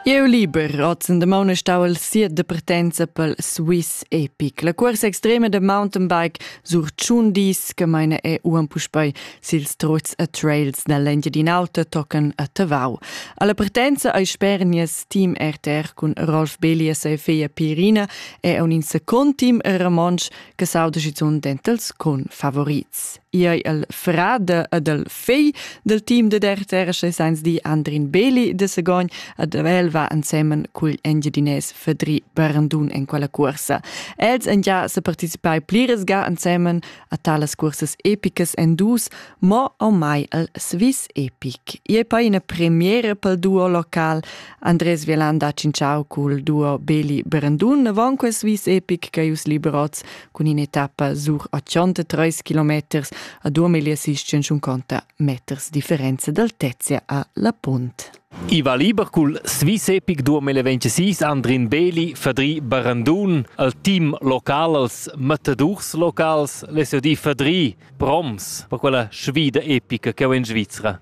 Eu liber ozen de maune stau al siet de pretenza pel Swiss Epic. La cursa extrema de mountainbike sur tschun dis che meine è uan puspei sils trots a trails nell'Engiadin Auta tocan a Tavau. Alla partenza ai sper nies team RTR cun Rolf Belias e Fea Pirina è un in second team Ramonsch che sauda schizunt dentels con favorits. Iei el frade ed el fei del team de DRTR seins di Andrin Beli de Segogn ed el va ensemen cugl engiadinès Fedri Barandun en quella cursa. Els en ja se participai pliras ga ensemen a talas cursas epicas en dus, mo o mai el Swiss Epic. Ie poi ina premiere pel duo local Andres Violanda Cinciao cul duo Beli Barandun von quel Swiss Epic Caius Liberoz cun in'etappa sur 83 km a 2650 meters differenza d'altezza a La Punt. I va liber cul Swiss Epic 2026 Andrin Beli, Fadri Barandun, al team local, als matadors locals, l'SOD Fadri, proms per quella sfida epica che ho in Svizzera.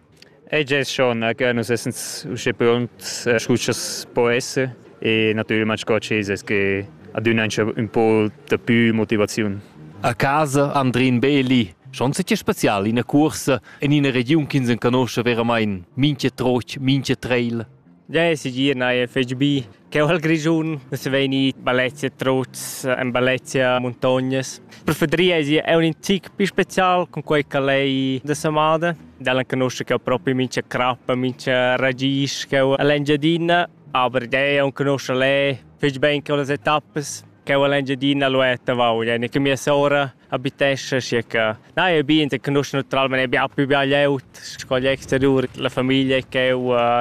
Ei gest schon che nus essens uschè pront sco ch'els po esser e natüralmein sco ch'els es que adüna ün po dapü motivaziun. A casa Andrin Beeli schon sitg special ina cuorsa in ina regiun ch'ins enconosce veramain mincha troch, mincha treil. Ja, es segir, neir fetg bi. Cheu hal Grischun nus vegni Balezia Truz, en Balezia Muntognas. Per Fedria è è un tic più special con quei che lei da Samada. Dalla conosce che proprio mincha crappa, mincha ragis che l'Engiadina, aber dei on conosce lei fich ben che le tappe che l'Engiadina lo è tavau, ja ne che mia sora abitescha sche che na è bien che nus naturalmente abbiamo più glieud sco gli exterior la famiglia che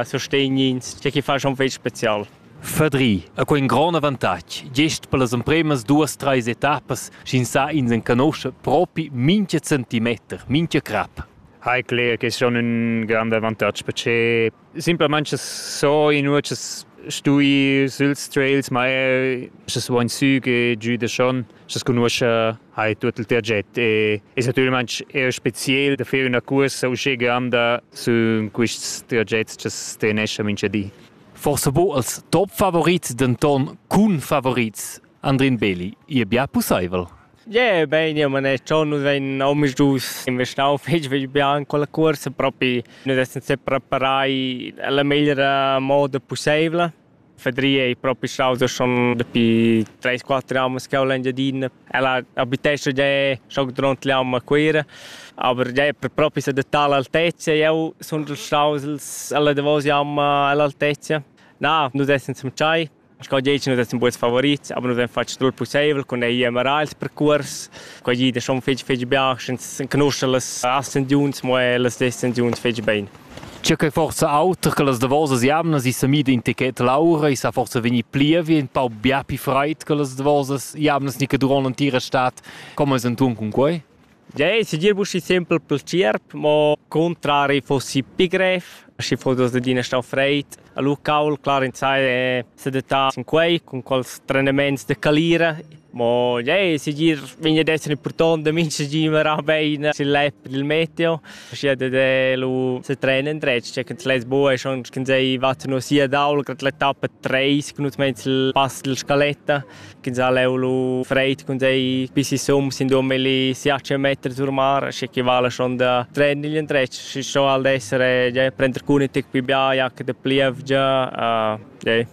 sostegnins che chi fa schon fetg special Fadri ha quei in grond avantatg, gest per las empremas duas treis etappas sch'ins sa ins enconosce propi mincha centimeter, mincha crap. Hai cler che è schon un grande avantatg perché Simplamain so inua ch'es stui süls trails, ma eir scha's vo insü che giü da Schon, scha's cugnuoscha hai tuot il target e es natüralmaing eir speziel da fer üna cuorsa uschega'm da sün quists targets cha's treneschan mincha di. Forsa bo als top favorits, denton cun favorits Andrin Beli, ihr bia pusseivel. Yeah, bein, ja, man è schon nus ein omisdus investau fetg fetg bien quella cuorsa, propi nus essan sepreparai la meglra moda pusseivla. Fadri ei propi staus schon dapi 3-4 anni ch'jeu l'Engiadina. Ella abitescha gia schon duront l'ann a Cuira, aber ja è propi s'adattar all'altezza. Jeu sun staus alla davos jamma all'altezza. Na, nus essan semtschai Sco dici nus essan buns favorits, aber nus haben fatg tut pusseivel cun ir era als percurs. Quei gida schon fetg fetg bia, sch'ins conosce las ascensiuns, mo las descensiuns fetg bene. C'è che forza auter che las davosas jamnas i sa mida in ticket l'aura, i sa forza vegnir plievi, un pau bia più freid che las davosas jamnas ni che durant l'entira stat. Come es entun cun quei? Tgei segir buschi sempel pel tgierp, mo cuntrari fossi pi grev, schi foss adina stau freid. Lu cauld clar insai è sedattà sin quei cun quels trenaments da calira. Mo ei segir vegn ad esser impurtont da mintga gi mirar bein sil lep dil meteo, aschia dat ei lu setren endretg, tgei ch'ins less buca e schon sch'ins ei va tenor sia daula grad l'etappa treis cun nus meins il pass dalla scaletta. ch'ins ha leu lu freid cun tei bisi sum sin dummi li siace meter sur mar sche che vala schon da trennen igl endretg sche schon al d'essere ja, prender cun tic pi bia jac de plievgia uh, ja.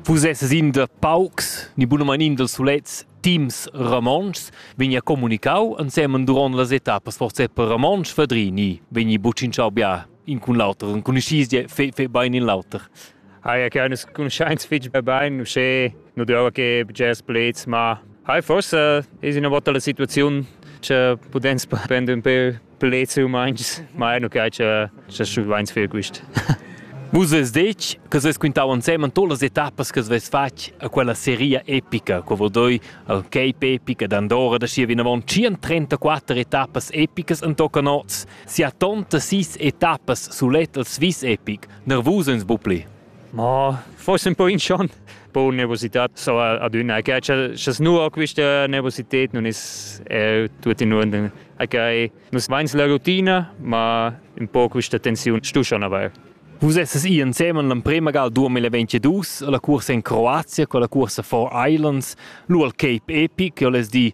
Fusesses in de paucs ni bunaman in dels sulets teams romontschs vegnia comunicau ensemen duront las etappas forse per romontsch Fadrini vegni bucin chau bia in cun l'auter, cun ischis fe, fe bain in l'auter. Hai che nus cuntschains fitg bain, usche nu dura che bgers pleds, ma hai forse es una volta la situaziun che pudens prender un peu pleds umans, ma è nu che che che schuvains fer quist. Vus es detg che ses quintau ensemen todas las etappas che vess fatg a quella seria epica, co vo doi al Cape epica d'Andorra da schi vinavon 134 etappas epicas en tocca nots Sia tonta sis etappas sulet el Swiss Epic nervus ins bu pli. Ma forse un po in schon po nervosità so adüna che chas nua quista nervosited non is tuttina in okay nus vains la rutina ma un po quista tensiun stu schon avair Vus esses i ensemen l'emprema gal 2022 la cursa in Croazia con la cursa For Islands, l'World Cape Epic, che les di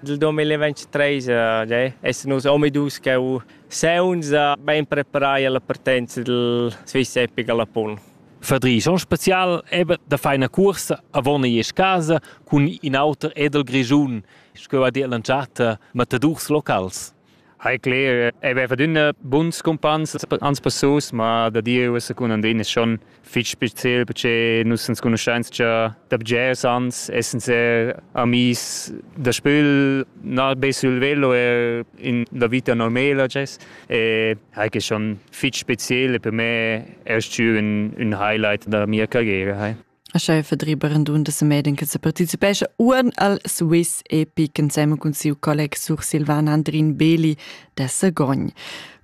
Dil 2023 eh, essan nus omadus cheu saunza bein preparai alla partenza dil Swiss Epic alla Pun. Fadri schon spezial eben da feina cuorsa avon ei casa cun in auter edel Grischun, sco va dir l'entschatta matadurs locals. Hai cler, ei veva d'una buns cumpans ans passus, ma da Dieu es cun Andrin es schon fich speziel perché nus ans conoscenza da bgers ans, essan ser amis da spül, na be sul velo, er in la vita normela gess. E hai que schon fich speziel e per me erst ün, ün highlight da mia carriera. Hai. Ascha fadriba randun da semeden che se participescha uan al Swiss Epic inseme cun siu colleg Sur Silvan Andrin Beli da Sagogn.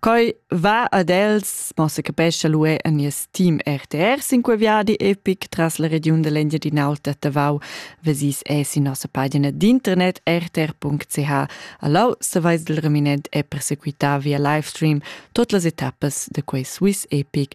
Coi va ad els, ma se capescha l'UE a nies team RTR sin quei viadi epic tras la regiun dell'Engiadin'Alta Tavau vesis e sin nossa pagina d'internet rtr.ch. Allau savais del reminent e persequità via livestream tot las etappas de quei Swiss Epic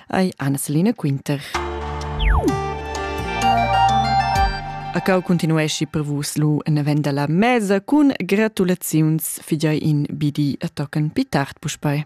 ei Anna-Selina Quinter. A cau continuesci per vus lu en event la mesa cun gratulaziuns fidei in bidi a tocken pi tard puspei.